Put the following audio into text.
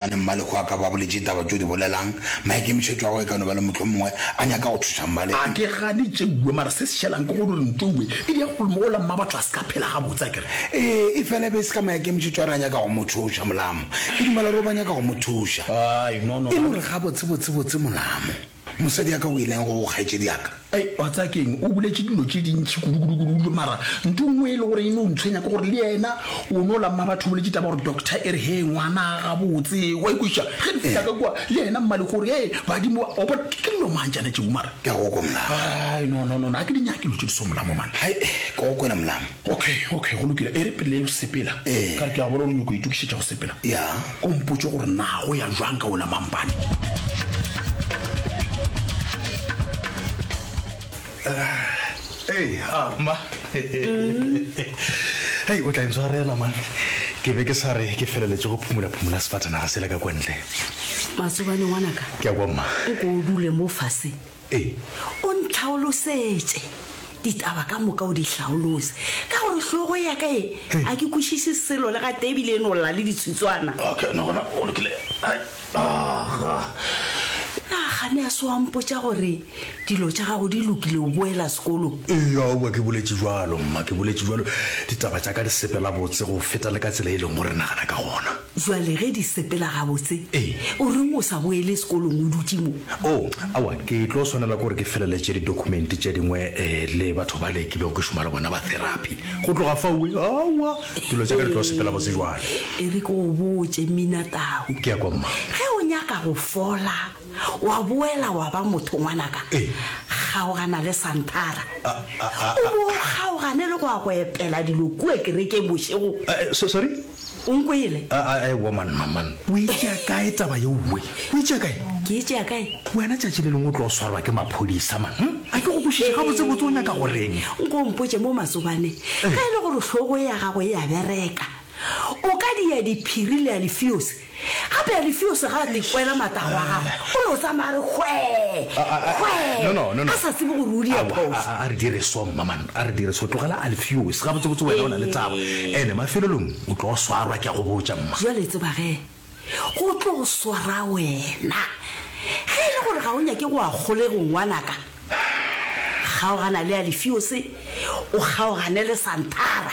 Bjale Mmalekgo a ka ba boletše ditaba tše o di bolelang, maikemišetšo a gagwe e ka no ba le mohlomongwe a nyaka go thuša Mmalekgo. A ke gane tšeuwe, mara se se šelang ke gore Ntouwe e di ya go lmo ola mmabo a tla se ka phela gabotse, a ke re. Ee, e fela e be e se ka maikemišetšo a re a nyaka go mo thuša, Molamo. Ke dumela gore o ba nyaka go mo thuša. Aai, no, no, ga. E le gore gabotse-botse-botse, Molamo. Mosadi ya ka o ileng go kgaetšedi ya ka. Ai, wa tsaya keng, o boletše dilo tše dintši kudukudukudu mara nto nngwe e le gore e no ntshwenya ke gore le yena o no la mma batho o boletše taba gore doctor e re hee ngwana a gabotse wa ikweša ge re fihla ka kua le yena mmale gore hee badimo o bona ke dilo mang tšana tšeo mara ke a go kwe molamo ai no no no ga ke di nyake dilo tše di so molamo mane hai ke go kwela molamo Ok, ok, go lokile. E re pele o sepela, ka re ke a bona gore o nyoko itokišetša go sepela. Ko mpotše gore na go ya jwang ka ona mampane. Ee, a ma. Hei, o tla ntshwarela man. Ke be ke sa re ke feleletše go phumula-phumula sefatanaga sela ka kwantle. Masobane ngwanaka. Ke a kwa mma. O ko o dule mo fase. Ee, o ntlhaolosetše ditaba ka moka, o di hlaolose, ka gore hlogo ya ka e, a ke kwešiše selo le gatee ebile e no lla le ditshitswana. Okay, no gona o lokile. Hai, aga. Na ga ne a se wa mpotša gore dilo tša gago di lokile, o boela sekolong? Ee, aowa, ke boletše bjalo, mma, ke boletše bjalo. Ditaba tša ka di sepela botse go feta le ka tsela e leng gore re nagana ka gona. Jwale ge di sepela gabotse, Ee. o reng o sa boele sekolong o dutše mo? Oo, aowa, ke tlo swanela ke gore ke feleletše didokumente tše dingwe eh, le batho bale ke bego ke šoma le bona ba therapy. Go tloga faue, aowa, dilo tša ka di tlo sepela botse bjale. E re ke go botše, Mminatau. Ke ya kwa, Mma. Ge o nyaka go fola, wa boela wa ba motho, ngwanaka, Ee. kgaogana le Santhara. A, a, a, a. O bo o kgaogane le go ya go epela dilo kua kerekeng bošego. Eh, eh, so, sorry? O nkwele? A, a, a, ewa man, man. O e tšea kae taba ye uwe? O e tšea kae? Ke e tšea kae? Wena tšatši le lengwe o tlo swarwa ke maphodisa man. Hm? A ke go kwešiše gabotsebotse o nyaka go reng? Nko o mpotše mo Matsobane, ge e le gore hlogo ya gago e a bereka, o ka dia diphiri le alifiosi Gape Alifeose ga a ka ikwela matago a gagwe, o no tsamaya a re hwee, A- a- a- hwee, no, no, no, no. a sa tsebe gore o di Aowa, a- phosa. a- a re dire so mmaman a re dire so tlogela alfeos gabotsebotse wena o na le tsabo Ee. ene mafelelong o tlo swarwa ke a go botša mma Bjale tseba ge go tlo swara wena. Ge e le gore ga o nyake go a kgolego ngwanaka, kgaogana le Alifeose, o kgaogane le Santara.